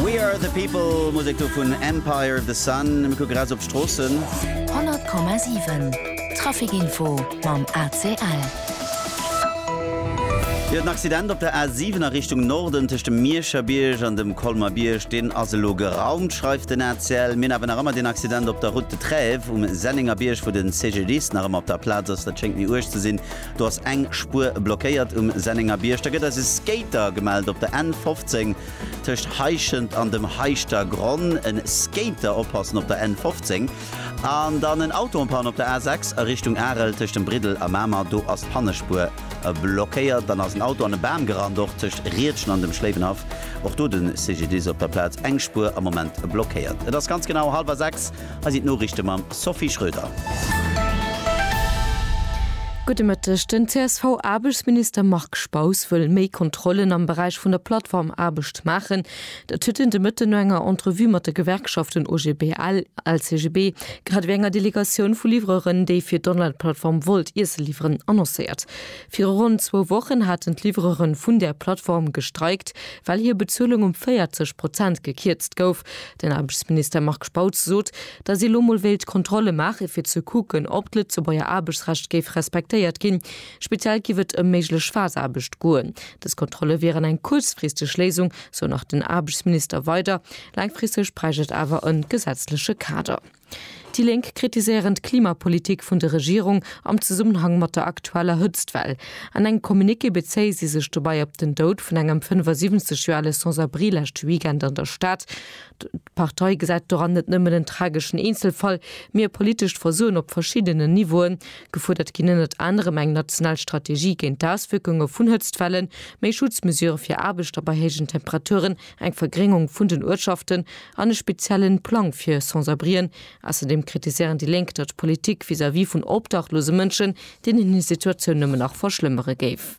We Are The People, Musek do vun Empire of the Sun. Mir kucke ras op d'Stroossen. 100,7 Traficinfo mam ACL. Jo, den Accident op der A7 a Richtung Norden tëscht dem Mierscher Bierg an dem Colmer Bierg, deen ass elo geraumt, schreift den ACL. Mir hunn awer nach ëmmer deen Accident op der Route de Trèves um Sennénger Bierg, wou de CGDIS nach ëmmer op der Plaz ass. Dat schéngt méi uerg ze sinn. Do ass eng Spuer blockéiert um Sennengerbierg. Da gëtt eis e Skater gemellt op der N 15 tëscht Heischent an dem Heischter Gronn. E Skater oppassen op der N 15. An dann en Auto en panne op der A 6 a Richtung Arel tëscht dem Briddel a Mamer. Do ass d'Pannespuer blockéiert. Dann ass en Auto an e Bam gerannt, och tëscht Riedgen an dem Schléiwenhaff. Och do de CGDIS op der Plaz. Eng Spuer am Moment blockéiert. Et ass ganz genau hallwer 6. Hei sinn d'Noriichte mam Sophie Schröder. Gudde Mëtteg. Den CSV-Aarbechtsminister Marc Spaus wëll méi Kontrollen am Beräich vun der Plattformaarbecht maachen. Dat huet en de Mëtten no enger Entrevue mat de Gewerkschaften OGBL, LCGB, grad ewéi enger Delegatioun vu Livreuren, déi fir d'Onlineplattform Wolt Iesse liwweren, annoncéiert. Viru ronn zwou Wochen haten d'Livreuren vun där Plattform gestreikt, well hir Bezuelung um 40 Prozent gekierzt gouf. Den Aarbechtsminister Marc Spautz sot, datt ee lo mol wéilt Kontrolle maache fir ze kucken, ob d'Lëtzebuerger Aarbechtsrecht géif respektéiert ginn. Speziell géif et ëm méiglech Phase-Aarbecht goen. Dës Kontrolle wieren eng kuerzfristeg Léisung, sou nach den Aarbechtsminister weider. Laangfristeg bräicht et awer e gesetzleche Kader. Déi Lénk kritiséieren d'Klimapolitik vun der Regierung am Zesummenhang mat der aktueller Hëtztwell. An engem Communiqué bezéie si sech dobei op den Doud vun engem 75 Joer ale Sans-abri leschte Weekend an der Stad. D'Partei gesäit doran net nëmmen en trageschen Eenzelfall, mee e politescht Versoen op verschiddenen Niveauen. Gefuerdert ginn ënnert anerem eng national Strategie géint d'Auswierkunge vun Hëtztwellen, méi Schutzmesure fir Aarbechter bei héijen Temperaturen, eng Vergréngung vun den Uertschaften an e speziellen Plang fir Sans-abrien. Ausserdeem kritiséieren déi Lénk, datt d'Politik vis-à-vis vun obdachlose Mënschen deenen hir Situatioun nëmmen nach verschlëmmere géif.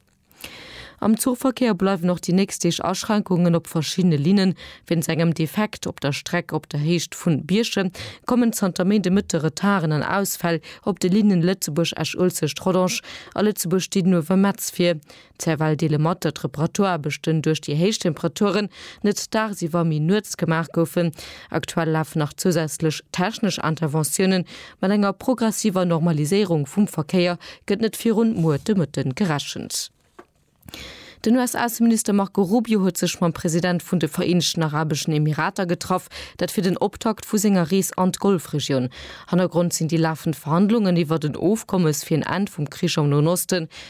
Am Zuchverkéier bleiwen och déi nächst Deeg Aschränkungen op verschiddene Linnen. Wéinst engem Defekt op der Streck op der Héicht vu Bierchem kommen zanter Méinde Mëtte Retarden an Ausfäll op de Linne Lëtzebuerg-Esch-Uelzecht-Rodange a Lëtzebuerg-Didenhover-Metz vir. Zerwell deele mat, datt d'Reparaturaarbechten duerch déi héich Temperaturen net dagsiwwer, mee nuets gemaach goufen. Aktuell lafen nach zousätzlech technesch Interventiounen. Mat enger progressiver Normaliséierung vum Verkéier gëtt net virun muer de Mëtten gerechent. Den US-Ausseminister Marco Rubio huet sech mam President vun de Vereenegten Arabeschen Emirater getraff, dat fir den Optakt vu senger Rees an d'Golfregioun. Hannergrond sinn déi lafend Verhandlungen iwwert en Ofkommes fir en Enn vum Krich am Noen Osten.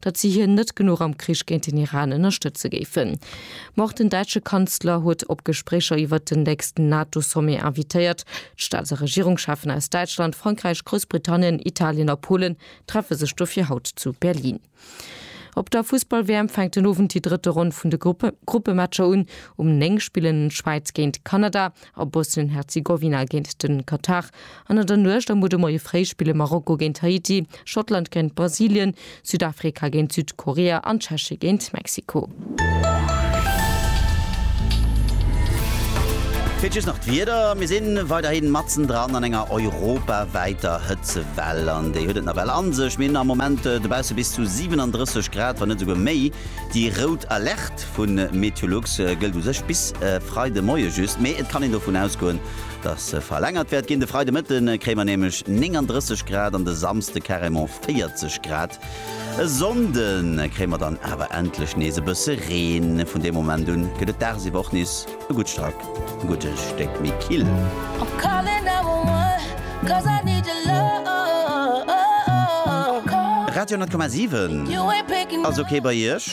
datt si hien net genuch am Krich géint den Iran ënnerstëtze géifen. Ma och den däitsche Kanzler huet op Gespréicher iwwert den nächsten NATO-Sommet invitéiert. D'Staats a Regierungscheffen aus Däitschland, Frankräich, Groussbritannien, Italien a Polen treffe sech dofir haut zu Berlin. Op der Fussball-WM fänkt den Owend déi drëtte Ronn vun de Gruppe Gruppematcher un. Um 9 spillen d'Schwäiz géint Kanada a Bosnien-Herzegowina géint de Katar an an der Nuecht a muer de Moie fréi spille Marokko géint Haiti, Schottland géint Brasilien, Südafrika géint Südkorea an d'Tscheche géint Mexiko. Fir just nach d'Wieder, Mir si weiderhi matzendran an enger europawäiter Hëtzewell an déi huet et nawell a sech. Mir hunn am Moment dobausse bis zu 37 Grad, wann net esouguer méi. Déi rout Alerte, Test vu Meteolux gëllt u sech bis Freide Moie just, mee et kann een dovun ausgoen, datt se verlängert wäert ginn. De Freide Mëtte kréie mer nämlech 39 Grad an de Samsde carrément 40 Grad. E Sonnde kréie mer dann awer endlech nees e bësse Reen. Vun deem Moment un gëtt et dagsiwwer och nees e gutt Strack e gudde Stéck méi kill. Radio 10,7 ass ok bei Iech?